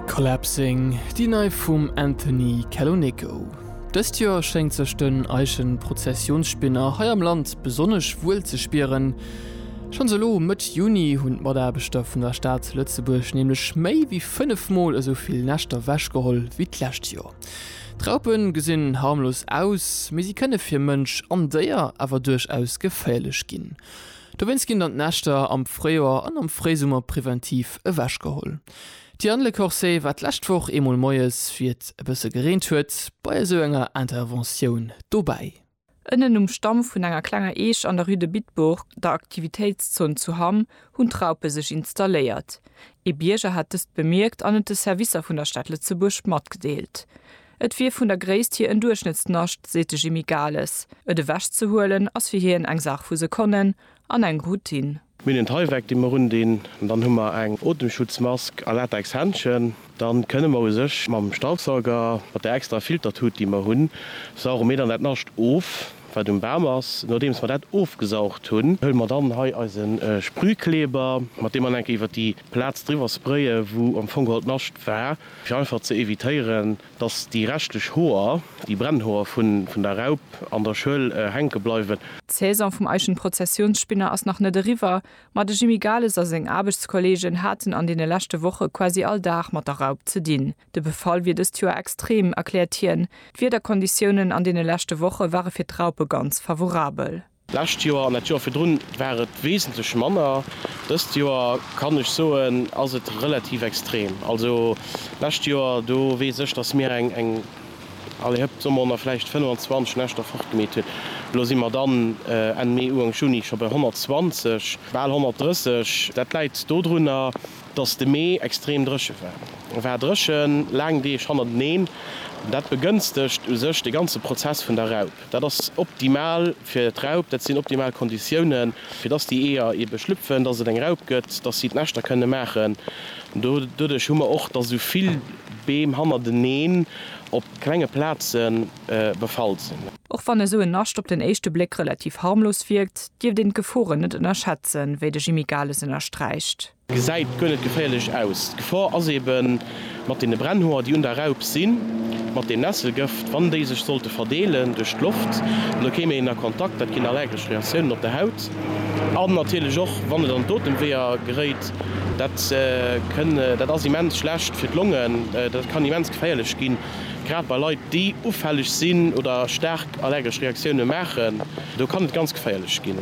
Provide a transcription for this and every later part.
Collapsing, déi nei vum Anthony Caloneco. Dëst Joer schéngt sech den Eichenprozessionsspinner hei am Land besonnesch wuel ze spieren. Schonns elo Mëtt Juni hunn d'Mataarbechter vun der Stad Lëtzebuerg nämlech méi wéi 5 Mol esou vill Näschter wechgeholl wéi d'lescht Joer. D'Raupe gesinn harmlos aus, mee si kënne fir Mënsch an Déier awer duerchaus geféierlech ginn. Dowéinst ginn dann d'Näschter am Fréijoer an am Fréisummer preventiv ewech geholl. D'Diane Lecorset war d'lescht Woch eemol moies, wéi et e bësse gereent huet, bei esou enger Interventioun dobäi. Ënnen um Stamm vun enger klenger Eech an der Rue de Bitburg, der Aktivitéitszon zu Hamm, hunn d'Raupe sech installéiert. Ee Bierger hat dëst bemierkt an et de Servicer vun der Stad Lëtzebuerg matgedeelt. Et wier vun der Gréisst hir en Duerchschnëttsnascht, seet de Jimmy Gales. Et ewech ze huelen ass fir hien eng Saach vu Sekonnen an eng Routine. Mir hunn en Tyvek, dee mer undinn, dann hu mer eng Otemschutzmask a Latex-Händchen. Dann kënne mer u sech mam Staubsauger, mat där extra Filtertut, déi mer hunn, sauge mir dann dat Nascht of, wat um Bam ass. Nodeems mer dat ofgesaugt hunn, huele mer dann hei eise Sprühkleber, mat deem mer enke iwwer déi Plaz driwwer spraye wou am Fong geholl d'Nascht war. fir einfach ze evitéieren, dass déi reschtlech Hoer, déi Brennhoer vun der Raup an der Schuel hänke bleiwen. D'Saison vum Eichenprozessionsspinner ass nach net eriwwer, ma de Jimmy Gales a seng Aarbechtskollegen haten an deene leschte Woche quasi all Dag mat der Raup ze dinn. De Befall wier dëst Joer extrem, erkläert hien. D'Wiederkonditiounen an deene leschte Woche ware fir d'Raupe ganz favorabel. D'lescht Joer an dat Joer virdrun war et wesentlech manner. Dëst Joer kann ech soen, ass et relativ extrem. Also d'lescht Joer, do weess ech, datt mir eng, eng, allez hëpp, soe mer honnert, vläicht 25 Näschter fortgemeet hunn. Elo si mer dann Enn Mee, Uank Juni scho bei 120, bal 130. Dat läit dodrunner, Dass de Mee extrem dréche war. E war dréchen, laang Deeg hannerteneen. Dat begënstegt u sech de ganze Prozess vun der Raup. Dat ass optimal fir d'Raup. Dat sinn optimal Konditiounen, fir dass déi Eeër ebe schlüpfen, dass et eng Raup gëtt, dass si d'Näschter kënne maachen. Doduerch hu mer och, dass esou vill Beem hannerteneen op klenge Plaze befall sinn. Och wann esou en Nascht op den éischte Bléck relativ harmlos wierkt, dierft een d'Geforen net ënnerschätzen, wéi de Jimmy Gales ënnersträicht. Gesäit guer net geféierlech aus. D'Gefor ass ebe mat deene Brennhoer, déi un der Raup sinn, mat deem Nesselgëft, wann déi sech sollte verdeelen duerch d'Loft, da kéim een a Kontakt, dat ginn allergesch Reaktiounen op der Haut. An natierlech och, wann et an d'Otemweeër geréit, dat kënn, dat ass immens schlecht fir d'Longen, dat kann immens geféierlech ginn. Grad bei Leit, déi ufälleg sinn oder staark allergesch Reaktioune maachen, do kann et ganz geféierlech ginn.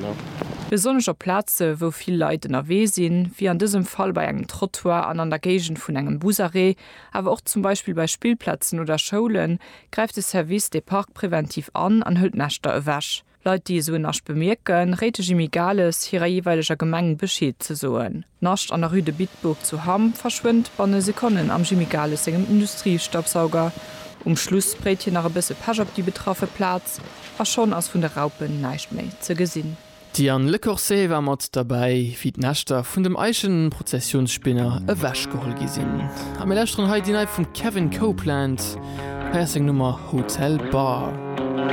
Besonnesch op Plaze wou vill Leit ënnerwee sinn, wéi an dësem Fall bei engem Trottoir an an der Géigend vun engem Busarrêt, awer och zum Beispill bei Spillplazen oder Schoulen, gräift de Service des parcs préventifs an an hëlt Näschter ewech. Leit déi esou en Nascht bemierken, réit de Jimmy Gales hirer jeeweileger Gemeng Bescheed ze soen. D'Nascht an der Rue de Bitburg zu Hamm verschwënnt banne Sekonnen am Jimmy Gales sengem Industriestaubsauger. Um Schluss spréit hien nach e bësse Pesch op déi betraffe Plaz a schonn ass vun de Raupen näischt méi ze gesinn. D'Diane Lecorset war mat derbäi, wéi d'Näschter vun dem Eichenprozessionsspinner ewechgeholl gi sinn. A mir lauschteren hei déi nei vum Kevin Copeland. Hei ass seng Nummer Hotel Bar.